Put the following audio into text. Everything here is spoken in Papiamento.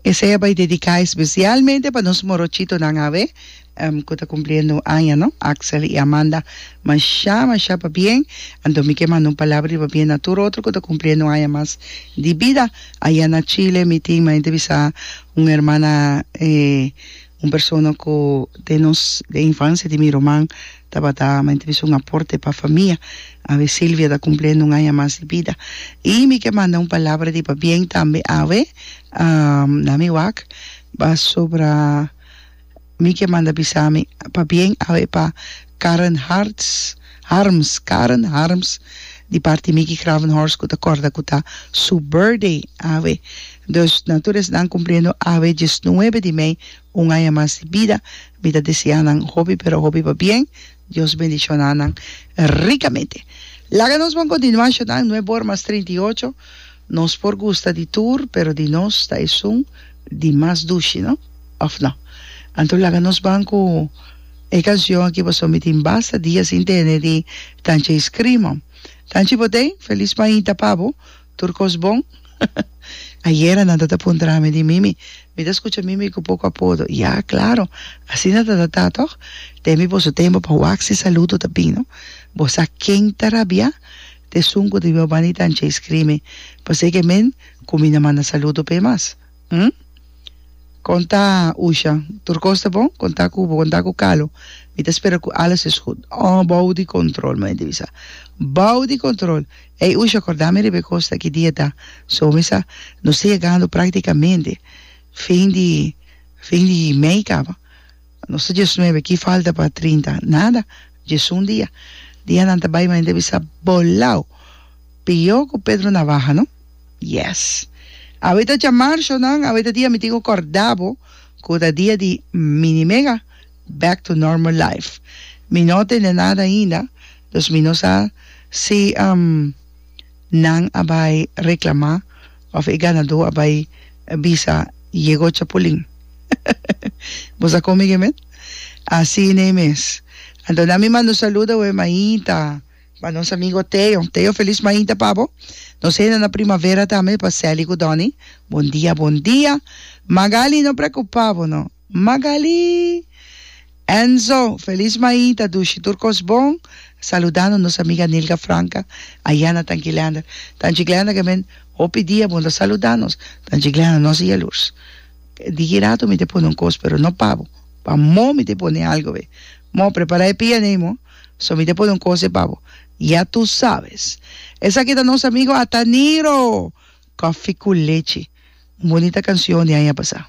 Esei a bai dediká espesialmente pa nos morochitonan awe ku ta kumpliendo un aña, no, Axel i Amanda. Mashá, mashá pabien. Anto mi ke manda un palabra di pabien na tur otro ku ta kumpliendo un aña mas di bida. Ayá na Chile mi tin, mi a intèrbisá un hermana Un persona ku den nos den infansia di mi ruman tabata mente bisa un aporte pa famia. Awe Silvia ta kumpliendo un aña mas di bida i mi ke manda un palabra di pabien tambe awe na mi wak pasobra mi ke manda bisa mi pabien awe pa Karen Hartz, Harms, Karen Harms, di parti Mickey Gravenhorst ku ta kòrda ku ta su burdey awe. Dus na tur esnan kumpliendo awe diesnuebe di mei un aña mas di bida, mi ta deseá nan hopi pero hopi pabien. Dios bendishoná nan rikamente. Laga nos bon kontinuá shutá en Nuebormas treinta i ocho Nos por gusta di tur, pero di nos ta esun di mas dushi, no? Of no? Anto laga nos ban cu e cancion aki pasobra mi tin basta dia sin tene di cancha e scrima. Canchi bo den, feliz mainta pa bo, tur cos bon. Ayera nan ta ta puntra nami di Mimi, mi ta scucha Mimi cu poco apodo. Ya, claro, asina ta ta ta toch? Temi boso tempo pa wax y saludo ta bin, no? Bo sa ken ta rabia? T'esun cu di Weobani ta anchey scrimi, Paseque men cu mi na manda saludo p'e mas. Hm? Con ta, Usha? Tur cos ta bon? Con ta cu bo? Con ta cu Calo? Mi ta spera cu alles es gud. Oh, bao di control, mami ta bisa. Bao di control! Ey, Usha, corda mi riba e cos ta ki dia ta. So mi sa, nos ta yegando practicamente fin di, fin di mei caba. Nos ta djosnuebe, ki falta pa trinta? Nada, djesun dia. Dianan ta bai ma hende a bisa, Bolao! Pió ku Pedro Navaha, no? Yes! Awe ta djamarzo, nan, awe ta dia mi tin ku kòrda bo ku ta dia di Mini Mega, back to normal life. Mi no tende nada ainda, dus mi no sa si. Nan a bai reclama of e ganador a bai bisa yego chapulin bo sa come ge men? Asi nei mes. Anto nan mi manda un saludo awe Maita pa nos amigo Teo. Teo feliz Maita pa bo. Nos henda na primavera tambe pa Sally cu Donny. Bon dia bon dia. Magali no preocupa bo no. Magali! Enzo! Feliz Maita dushi tur kos bon saludando nos amiga Nilka Franca aya na Tanchi Glender Tanchi Glender ke men hopi dia bon ta saluda nos Tanchi Glender nos i yalurs di ki rato mi te pone un kos pero no pa bo pa mó mi te pone algo be mó prepara e pia nei mó so mi te pone un kos e pa bo ya tu sabes esaki ta nos amigo Ataniro Koffie ku lechi. Un bonita kansion di aña pasá.